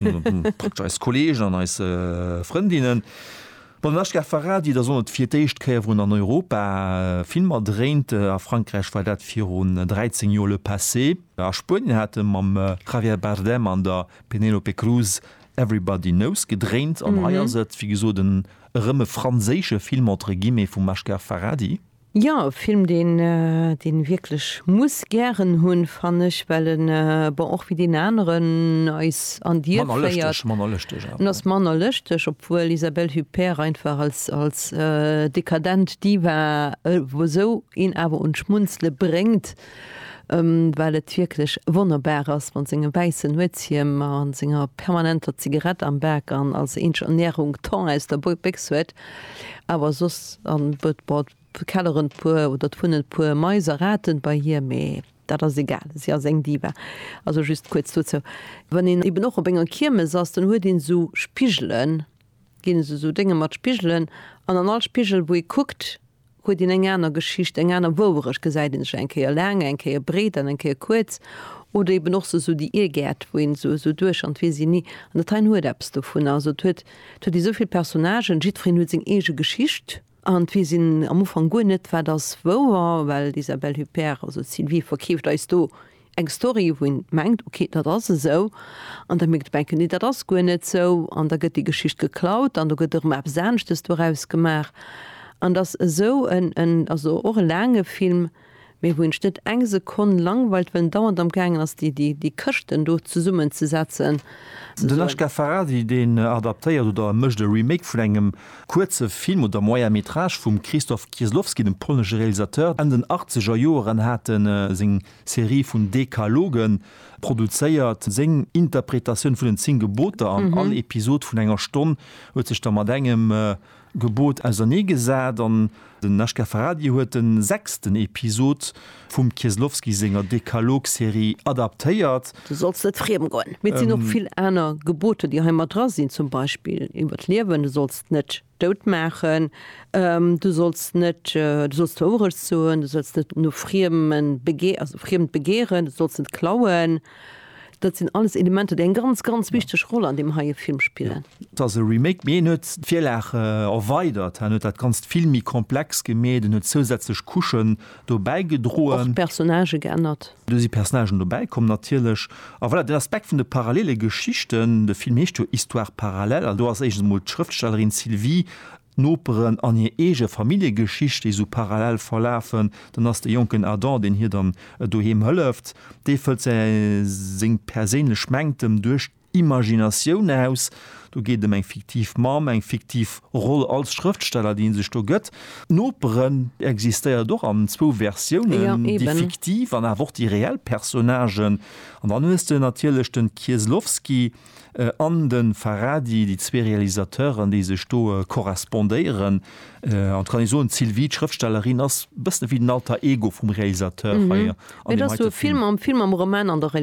Packt eis Kolleegen an eis Frëndinnen bei den Ashgar Farhadi, da soll et fir d'éischt Kéier erëm an Europa Filmer dréint. A Frankräich war dat virun 13 Joer Le Passé. A Spuenien hat e mam Javier Bardem an der Penélope Cruz Everybody Knows gedréint. An hei ass et, wéi gesot, erëm e franséische Film entre guillemets vum Ashgar Farhadi. Jo, e Film deen een wierklech muss gären hunn, fann ech, well en, bon, och wéi deen aneren, eis an Dier féiert. Manner lëschteg, manner lëschteg. En ass manner lëschteg, obwuel Isabelle Huppert einfach als, als dekadent Diva esou een awer un d'Schmunzele bréngt. well et wierklech wonnerbar ass mat sengem wäissen Nuetshiem a senger permanenter Zigarett am Bak an als eenzeg Ernährung Thon aus der Béchs huet, awer soss, an et kelleren d'puer oder et wunnen d'puer Mais a Raten bei hir, mee dat ass egal, si ass eng Diva. Also just kuerz dozou, wann een eben och op enger Kiermes ass, dann huet een esou Spigelen, ginn esou Dénge mat Spigelen, an an all Spigel wou ee kuckt, huet een eng aner Geschicht, eng aner Wouerecht, gesäit een sech eng Kéier laang, eng Kéier breet an eng Kéier kuerz, oder eben och esou déi Irrgäert, wou een esou esou duerch an d'Virsinni, an dat heien huet eppes dovunner, also et huet, et huet esou vill Personnagen, jiddwereen huet seng eege Geschicht, an d'Virsinne am Ufank guer net, wat ass wouer, well d'Isabelle Huppert, also d'Sylvie, verkeeft eis do Eng Story wou een mengt ok dat ass esou an da mierkt op eng Kéier nee dat ass guer net sou an da gëtt déi Geschicht geklaut an do gëtt erëm eppes aneschtes doraus gemaach an dass esou en en also och e laange Film mee wou een sech net eng Sekonn langweilt well en dauernd am gaangen ass déi déi déi Këschten do zesummen ze setzen. Den Ashgar Farhadi deen adaptéiert oder e mécht e Remake vun engem kuerze Film oder Moyen Métrage vum Krzysztof Kieslowski, dem polnesche Realisateur. Enn den Achtzeger Joeren hat e seng Serie vun Dekalogen, produzéiert seng Interpretatioun vun den 10 Geboter an all Episod vun enger Stonn huet sech da mat engem Gebot ausernee gesat an den HK Farhadi huet den sechsten Episod vum Kieslowski senger Dekalog-Serie adaptéiert. Du solls net friem goen. Mee et sinn och vill aner Geboter, déi hei mat dra sinn, zum Beispill iwwer d'Liewen, Du solls net. dout maachen, du solls net, du solls d'Wourecht soen, du solls net no Friemen begee, also Friemt begeeren, du solls net klauen, dat sinn alles Elementer, déi eng ganz, ganz wichteg Roll an deem heie Film spillen. Et ass e Remake, mee en huet d'Virlag erweidert, en huet dat Ganzt vill méi komplex gemeet, en huet zousätzlech Couchen dobäi gedroen. Och d'Personnagë geännert. Do si Personnagen dobäi komm natierlech. A voilà, den Aspekt vun de parallele Geschichten, de Film heescht jo Histoires parallèles, an do ass éischtens emol d'Schrëftstellerin Sylvie, d'Noperen an hir eege Familljegeschicht, déi esou parallel verlafen. Dann ass de jonken Adam, deen hir dann doheem hëlleft, dee fëllt seng perséinlech Mängtem duerch. Imaginatioun aus. Do geet ëm eng fiktiv Mamm, eng fiktiv Roll als Schrëftsteller, déi ee sech do gëtt. D'Noperen existéiert och an zwou Versiounen, déi fiktiv an awer och déi reell Personnagen. An dann hues de natierlech de Kieslowski an de Farhadi, déi zwee Realisateuren, déi sech do korrespondéieren. En tout cas kann ee soen, d'Sylvie, d'Schrëftstellerin, ass e bëssen ewéi den Alter Ego vum Realisateur hei an deem heite Film. Et ass esou e Film am Film, am Roman, an der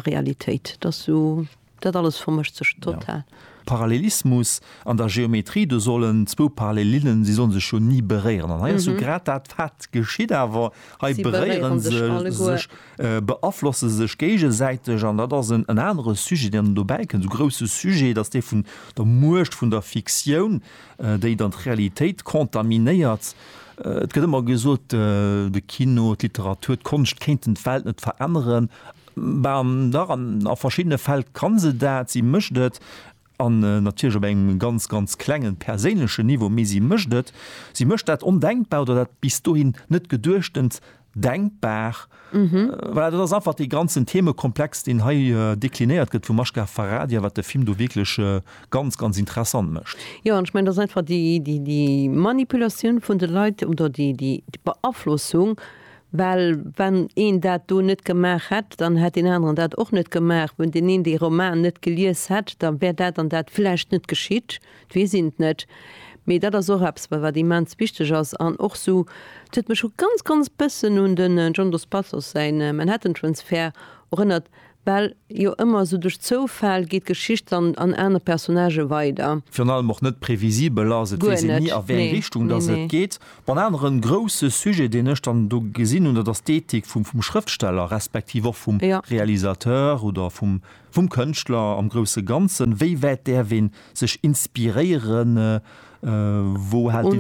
Realitéit. Et ass esou, dat alles vermëscht sech total. Parallelismus an der Geometrie, do sollen zwou Parallelillen, si sollen sech jo ni beréieren. An hei ass jo grad dat, wat geschitt awer. Hei beréiere se sech, beaflosse sech géigesäiteg. An dat ass en anere Sujet, deen dobäi kënnt, e grousse Sujet, dat ass dee vun der Muecht vun der Fiktioun, déi dann d'Realitéit contaminéiert. Et gëtt ëmmer gesot, de Kino, d'Literatur, d'Konscht kéinten d'Welt net veränneren. Ben dach, a verschiddene Fäll ka se dat, si mécht et, an natierlech op engem ganz, ganz klengen, perséinlechen Niveau, mee si mécht et. Si mécht dat Ondenkbar oder dat bis dohin Net-Geduechtent denkbar. Voilà, dat ass einfach dee ganzen Themekomplex, deen hei deklinéiert gëtt vum Mashkar Farhadi a wat de Film do wierklech ganz, ganz interessant mécht. Jo, an ech mengen, dat ass einfach déi, déi, déi Manipulatioun vun de Leit oder déi, déi Beaflossung, well wann een dat do net gemaach hätt, dann hätt deen aneren dat och net gemaach. Wann deen een dee Roman net gelies hätt, da wär dat an dat vläicht net geschitt. 't weess een 't net, mee dat ass och eppes, wat immens wichteg ass. An och sou, 't huet mech och ganz, ganz bëssen un de John Dos Passos säin Manhattan Transfer erënnert, well jo ëmmer sou duerch Zoufäll geet d'Geschicht dann an aner Personnagë weider. Virun allem och net previsibel ass, et weess een ni, a wéi eng Richtung dass et geet. Bon, en anere grousse Sujet, deen ech dann do gesinn hunn, dat ass d'Ethik vum Schrëftsteller, respektiv och vum Realisateur oder vum Vum Kënschtler am grousse Ganzen, wéi wäit däerf een sech inspiréieren, wou hält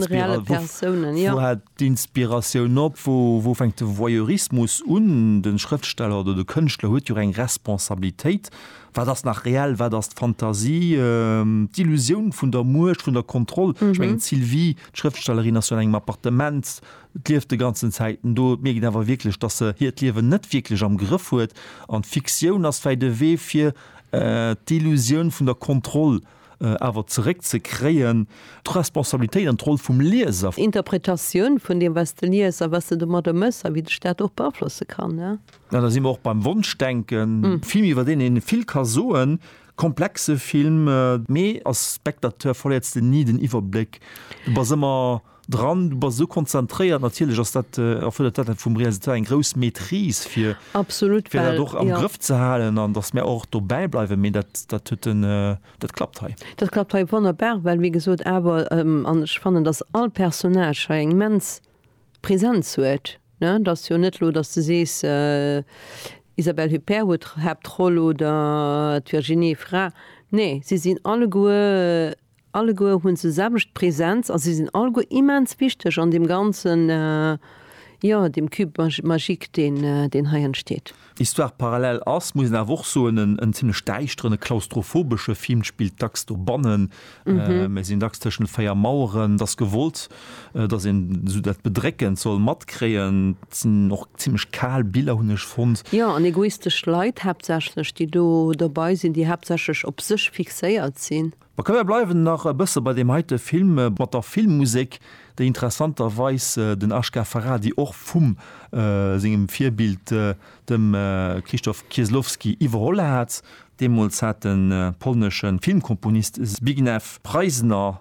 d'Inspiratioun op, wou fänkt de Voyeurismus un? De Schrëftsteller oder de Kënschtler huet jo och eng Responsabilitéit. Wat ass nach reell, wat ass d'Fantasie, d'Illusioun vun der Muecht, vun der Kontroll? Ech mengen d'Sylvie, d'Schrëftstellerin, ass jo an engem Appartement, Et lieft de ganzen Zäiten do. Et mierkt een awer wierklech, dass se hiert Liewen net wierklech am Grëff huet. An d'Fiktioun ass vläicht e Wee fir d'Illusioun vun der Kontroll awer zeréck ze kréien, d'Responsabilitéit an d'Roll vum Lieser. Interpretatioun vun deem wat s de lies a wat s de domadder méchs a wéi dech dat och beaflosse kann. An da si mer och beim Wonschdenken. Film iwwer deen ee vill ka soen, komplexe Film. Mee als Spectateur verléiers de ni den Iwwerbléck. Du bass ëmmer. Dran, du bass esou konzentréiert, natierlech ass dat, erfërdert dat vum Realisateur eng grouss Maîtrise fir fir dat och am Grëff ze halen an datt mär och dobäi bleiwen. Mee dat dat huet en, dat klappt hei. Dat klappt hei wonnerbar, well wéi gesot awer, an ech fannen, datt all Personnage hei eng immens Präsenz huet, ne. Et ass jo net elo, datt s de sees, Isabelle Huppert huet d'Haaptroll oder d'Virginie Efira. Nee, si sinn alleguer Alleguer hunn se selwecht Präsenz a si sinn alleguer immens wichteg an deem ganzen, jo, deem Cube magique, deen hei entsteet. Histoire parallèle ass, muss een awer och soen, en zimlech däischteren, e klaustrophobesche Film. D'Spill spillt dacks dobannen, mir sinn dacks tëschent véier Maueren. Et ass gewollt, dass een esou dat Bedréckend soll matkréien, et sinn och zimlech kal Biller, hunn ech fonnt. Jo, an egoistesch Leit haaptsächlech, déi do dobei sinn, déi haaptsächlech op sech fixéiert sinn. Mä komm, mir bleiwen nach e bësse bei deem heite Film, mat der Filmmusek, déi interessanterweis den Ashgar Farhadi och vu sengem Virbild, dem Krzysztof Kieslowski, iwwerholl hat. Deemools hat de polnesche Filmkomponist Zbigniew Preisner